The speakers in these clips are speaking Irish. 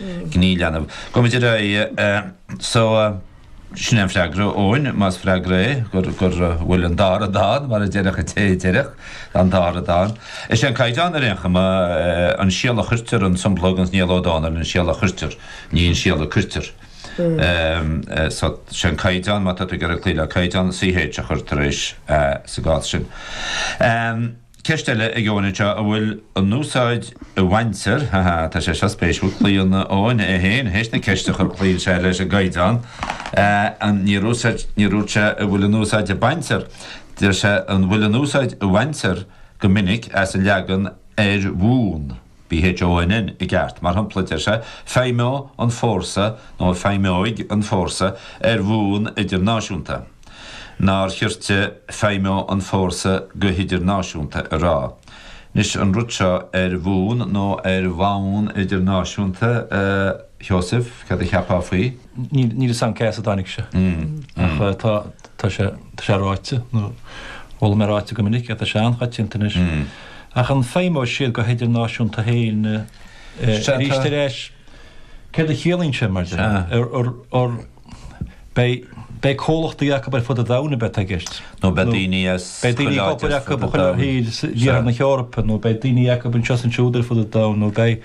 gníomh leanbh. Go mbeidh ar aghaidh so sin é an freagra, Eoin, más freagra é, go bhfuil an dara dán, mar a déarfadh an té a déarfadh, an dara dán. Is é an Caighdeán ar aon chuma, an síol a chuirtear, an sompla agus Niall Ó Dónaill, an síol a chuirtear, ní an síol a cuirtear. So sé an Caighdeán, má tá tú ag iarraidh cloí le Caighdeán, CH a chur tar éis sa gcás sin. Ceist eile ag Eoin anseo an bhfuil an úsáid a bhaintear, ha ha, tá sé seo spéisiúil, cloíonn Eoin é féin théis na ceiste a chur, cloíonn sé leis an gcaighdeán, níor dhúirt sé an bhfuil an úsáid a baintear, deir sé an bhfuil an úsáid a bhaintear go minic as an leagan ar bhonn. B H O N N i gceart, mar shampla, deir sé, feidhmeoidh an fórsa nó feidhmeoidh an fórsa ar bhonn idirnáisiúnta. Nár chirte feidhmeoidh an fórsa go hidirnáisiúnta a rá? Anois, an rud seo ar bhonn nó ar bhonn idirnáisiúnta, a Sheosaimh, cad a cheapfá faoi? Níl fhios agam cé as a dtáinig sé, ach tá. Tá sé, tá sé ráite, nó chuala mé ráite go minic é, tá sé an-choitianta anois. Ach an bhfeidhmeoidh siad go hidirnáisiúnta féin arís ar ais? Céard a chiallaíonn sé, mar sin? An mbeidh comhlachtaí acu ar fud an domhain, a bheidh i gceist? Nó beidh daoine as chuile áit ar fud an domhain? Beidh daoine acu ar fud an domhain, iarthar na hEorpa, nó beidh daoine acu anseo is ansiúd ar fud an domhain, nó beidh,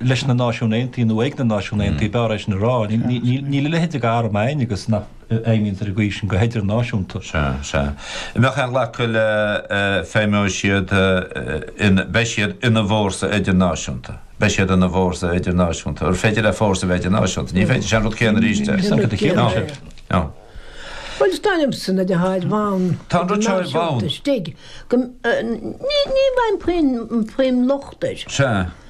leis na Náisiún Aontaithe nó ag na Náisiún Aontaithe, b'fhearr é sin a rá. Níl a leithéid d'arm ann agus nach bhfeidhmíonn ar an gcaoi sin go h-idirnáisiúnta. Sea, sea. An mbeadh aon ghlacadh le feidhmeoidh siad in, beidh siad ina bhfórsa idirnáisiúnta. Beidh siad ina bhfórsa idirnáisiúnta. An féidir le fórsa a bheith idirnáisiúnta? Ní féidir, sin an rud céanna arís é. Sin an rud céanna arís é. Nó. Bhuel, is dóigh liomsa na ná ar bhonn. Tá an rud seo ar bhonn. Ní bhfaighinn puinn, puinn locht air. Sea.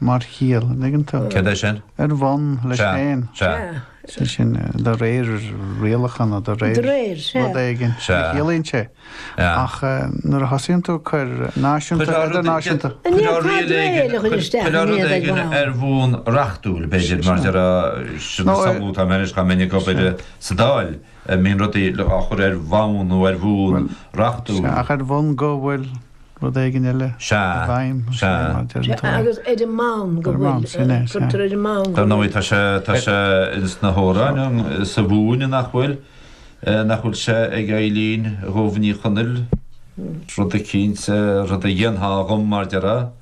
Mar chiall, an dtuigeann tú? Cad é sin? Ar bhonn leis Sea, féin. sea. Sea. Is sin, de réir rialachána, de réir. De réir, sea. rud éigin, Sea. a chiallaíonn sé. Sea. Ach nuair a thosaíonn tú ag cur náisiúnta, Coir rud idirnáisiúnta. An Coir iad, tá rud éigin, réir a chuir isteach coir an rud iad ag éigin bhá. ar bhonn reachtúil, b'fhéidir, mar déarfá, sin Nó, ag samhlú atá mé anois, chomh minic, obair sea. sa Dáil, eh, mbíonn rudaí le- á chur ar bhonn nó ar bhonn Bhuel, reachtúil. sea, ach ar bhonn go bhfuil. rud éigin eile i bhfeidhm. Agus ar an mbonn go bhfuil, cuirtear ar an mbonn. Dar ndóigh tá sé, tá sé ins na hamhráin sa Mhumhain nach bhfuil, nach bhfuil sé ag Eibhlín Dhubh Ní Chonaill rud eicínt, rud a dhéanfá dhom mar déarfá.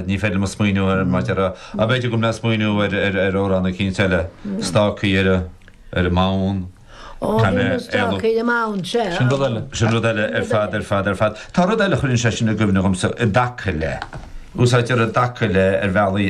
Ní féidir liom smaoineamh ar an áit. B'fhéidir go bhfuil mé ag smaoineamh ar amhrán eicínt eile, Stácaí ar an mBonn. Ó, bhí na stácaí ar an mbonn, sea. Sin rud eile, sin rud eile ar fad, ar fad, ar fad. Tá rud eile a chuireann sé sin i gcuimhne dhomsa i dtaca le, úsáidtear i dtaca le ar bhealaí.